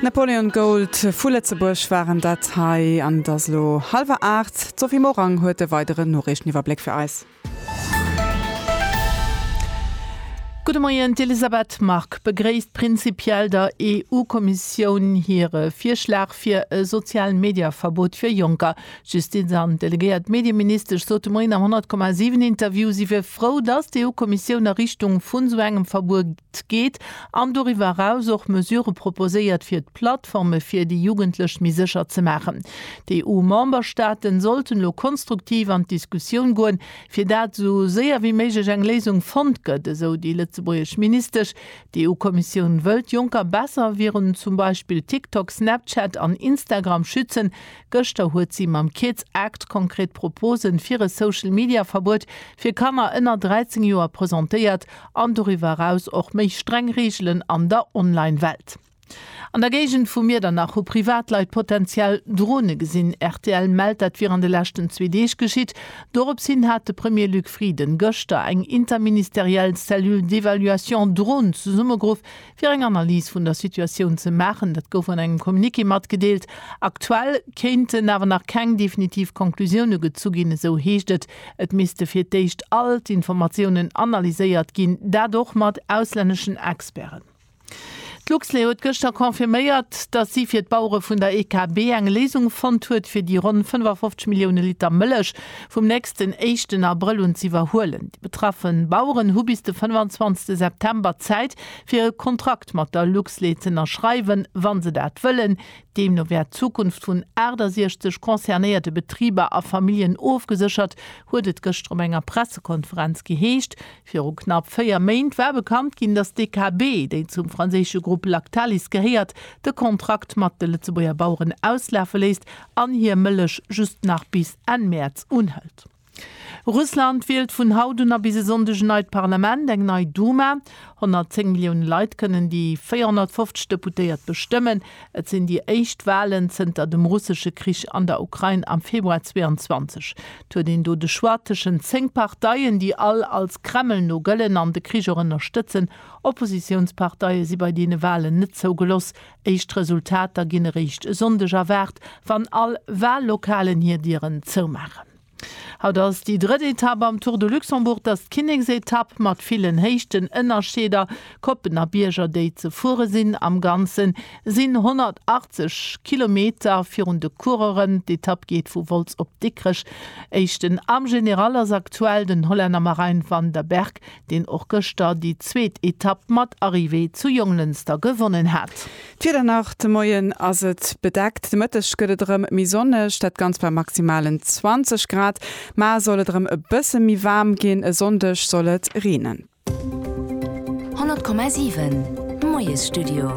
Napoleon Gold vu Lëtzebuerg waren dat hei an et ass elo hallwer 8. D'Sophie Morang huet e weideren Noriichteniwwerbléck fir eis. Gudde Moien, D'Elisabeth Margue begréisst prinzipiell der EU-Kommissioun hire Virschlag fir e Sozial-Media-Verbot fir Jonker. D'Justiz an delegéiert Medieministesch sot de Moien am 100,7 Interview, si wier frou, datt d'EU-Kommissioun a Richtung vun esou engem Verbuet geet an doriwwer eraus och Mesurë proposéiert fir d'Plattforme fir déi Jugendlech méi sécher ze maachen. D'EU-Memberstaaten sollten elo konstruktiv an d'Diskussioun goen, fir dat esou séier wéi méiglech eng Léisung fonnt gëtt, esou déi lëtzebuergesch Ministesch. D'EU-Kommissioun wëll d'Jonker besser virun zum Beispill TikTok, Snapchat an Instagram schützen, Gëschter huet si mam Kids Act konkret Proposen fir e Social Media Verbuet fir Kanner ënner 13 Joer presentéiert an doriwwer eraus och méi streng Reegelen an der Online Welt. An der Géigend vu Miedernach hu Privatleit potenziell Drone gesinn. Rtl mellt dat wier an de leschten zwee Deeg geschitt. Dorops hin hat de Premier Luc Frieden gëschter eng interministeriell Cellule d'évaluation Drone zesummegeruff fir eng Analys vun der Situatioun ze maachen. Dat gouf an engem Communiqué matgedeelt. Aktuell kéinten awer nach keng definitiv Conclusioune gezu ginn, esou heescht et. Et misste fir d'éischt all d'Informatiounen analyséiert ginn, dat och mat auslänneschen Experten. D'Luxlait huet gëschter confirméiert, datt si fir d'Bauere vun der EKB eng Léisung fonnt huet, fir déi ronn 55 Millioune Liter Mëllech vum nächsten éischten Abrëll un z'iwwerhuelen. Déi betraffe Baueren hu bis de 25 September Zäit, fir e Kontrakt mat der Luxlait z'ënnerschreiwen, wa se dat wëllen. Deemno wär d'Zukunft vun 68 concernéierte Betriber a Familljen ofgeséchert, huet et gëschter op enger Pressekonferenz geheescht. Viru knapp véier Méint war bekannt ginn, datt d'DKB, déi zum franséische Grupp Lactalis gehéiert, de Kontrakt mat de Lëtzebuerger Baueren auslafe léisst an hir Mëllech just nach bis Enn Mäerz unhëlt. Russland wielt vun haut un a bis e Sonndeg en neit Parlament, eng nei Duma. 110 Millioune Leit kënnen déi 450 Deputéiert bestëmmen. Et sinn déi éischt Walen zënter dem russesche Krich an der Ukrain am Februar 22. Et huet een do de Choix tëschent 10 Parteien, déi all als Kreml no gëllen an de Krich och ënnerstëtzen. Oppositiounsparteie si bei deene Walen net zougeloss. Éischt Resultater ginn eréischt e Sonndeg erwaart, wann all Wallokalen hir Dieren zoumaachen. Haut ass déi drëtt Etapp am Tour de Luxembourg. T'ass d'Kinneksetapp mat villen Héichtenënnerscheeder, Koppen a Bierger déi ze fuere sinn. Am Ganze sinn 180 Kilometer virun de Coureuren. D'Etapp geet vu Wolz op Dikrech. Éischten am General ass aktuell den Hollänner Marijn van der Berg. deen och gëschter déi zweet Etapp mat Arrivée zu Jonglënster gewonnen hat. D'Wieder nach, De Moien ass et bedeckt, de Mëtteg gëtt et erëm méi sonneg, dat Ganzt bei maximalen 20 Grad. Mar soll et erëm e bësse méi waarm ginn, e Sonndeg soll et reenen. 100,7 Moiesstudio.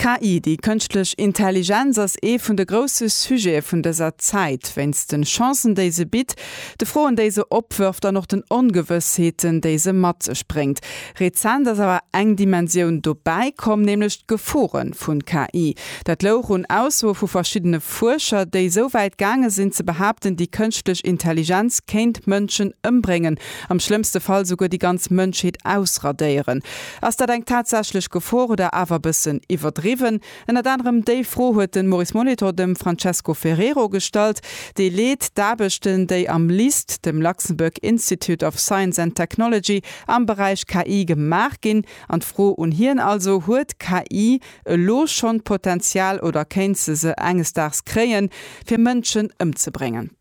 D'KI, déi kënschtlech Intelligenz, ass ee vun de grousse Sujete vun dëser Zäit. Wéinst de Chancen, déi se bitt, De Froen, déi se opwërft an och den Ongewëssheeten, déi se mat sech bréngt. Rezent ass awer eng Dimensioun dobäi komm, nämlech d'Gefore vun KI. Dat louch un Aussoe vu verschiddene Fuerscher, déi esou wäit gaange sinn ze behaapten, déi kënschtlech Intelligenz kéint Mënschen ëmbréngen, am schlëmmste Fall souguer déi ganz Mënschheet ausradéieren. Ass dat eng tatsächlech Gefor oder awer e bëssen iwwerdriwwen? Ënnert anerem déi Fro huet de Maurice Molitor dem Francesco Ferrero gestallt, dee leet d'Aarbechten, déi am LIST, dem Luxembourg Institute of Science and Technology, am Beräich KI gemaach ginn. An d'Fro un hien also, Huet d'KI elo schonn d'Potenzial oder kéint se se enges Daags kréien, fir Mënschen ëmzebréngen?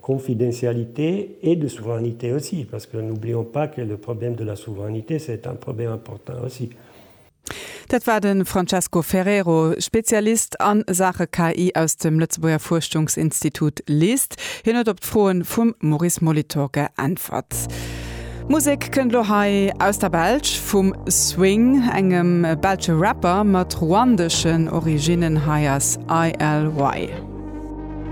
Confidentialité et de souveraineté aussi, parce que n'oublions pas que le problème de la souveraineté, c'est un problème important aussi. Dat war de Francesco Ferrero, Spezialist a Saache KI aus dem Lëtzebuerger Fuerschungsinstitut LIST. Hien huet op d'Froe vum Maurice Molitor geäntwert. Musek kënnt elo hei aus der Belsch, vum Swing, engem belsche Rapper mat ruandeschen Originnen. Hei ass ILY.